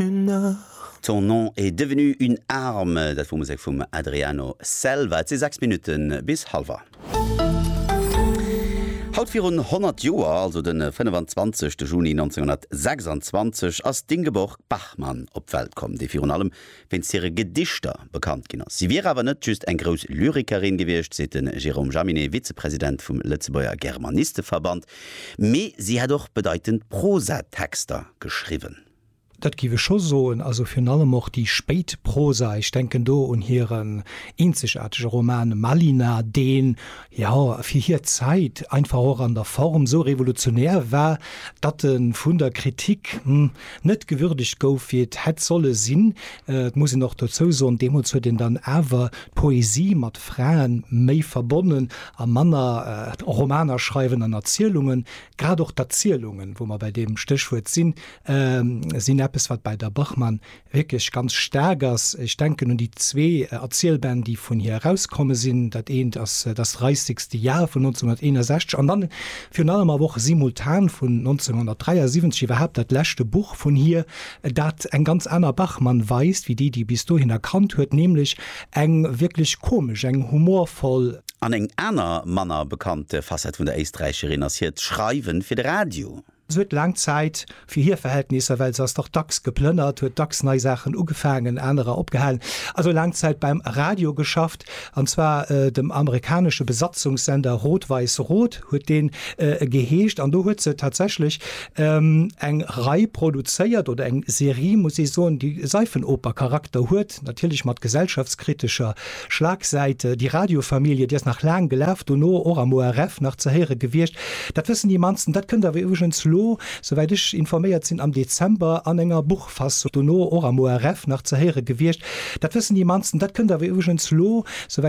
une art. Ton nom est devenu une arme, dat wor Musek vum Adriano Selva. Et si 6 Minutte bis halwer. Haut virun 100 Joer, also de 25 Juni 1926, ass d'Ingeborg Bachmann op d'Welt komm, déi virun allem wéinst hire Gedichter bekannt ginn ass. Si wier awer net just eng grouss Lyrikerin gewiescht, seet de Jérôme Jaminet, Vizepresident vum Lëtzebuerger Germanisteverband, mee si hätt och bedeitend Prosatexter geschriwwen. Dat giff ech scho soen. Also virun allem och déi spéit Prosa, ech denken do un hiren eenzegaartege Roman Malina, deen, jo, fir hir Zäit einfach och an der Form esou revolutionär war, datt e vun der Kritik, hm, net gewürdegt gouf, wéi et hätt solle sinn. Et muss een och dozou soen, deemools huet een dann awer d'Poesie mat Fraen méi verbonnen a manner Romaner schreiwen an Erzielungen. Grad och d'Erzielungen, wou mer bäi deem Stéchwuert sinn, sinn eppes, wat bei der Bachmann wierklech ganz staark ass. Ech denken un déi zwee Erzielbänn, déi vun hir erauskomme sinn. Dat eent ass Das reissigste Jahr vun 1961 an dann virun allem awer och Simultan vun 1973, iwwerhaapt dat leschte Buch vun hir, dat eng ganz aner Bachmann weist wéi déi, déi e bis dohin erkannt huet, nämlech eng wierklech komesch, eng humorvoll. An eng aner manner bekannte Facette vun der Éisträicherin ass hiert Schreiwe fir de Radio. Se huet laang Zäit, fir hir Verhältnisser, well se ass dach dacks geplënnert, huet dacks nei Saachen ugefaangen, anerer opgehalen, also laang Zäit beim Radio geschafft, an zwar dem amerikanesche Besatzungssender Rot-Weiß-Rot huet deen geheescht, an do huet se tatsächlech eng Rei produzéiert, oder eng Serie, muss ee soen, déi Seifenoper-Charakter huet. Projekt, natierlech mat gesellschaftskritescher Schlagsäit. Déi Radiofamilie, déi ass nach laang gelaf, dono och am ORF nach ze héiere gewiescht. Dat wëssen déi mannsten. Dat kënnt awer iwwregens lo, souwäit ech informéiert sinn, am Dezember an enger Buchfassung, dono och am ORF nach ze héiere gewiescht. Dat wëssen déi mannsten. Dat kënnt awer iwwregens lo, souwäit.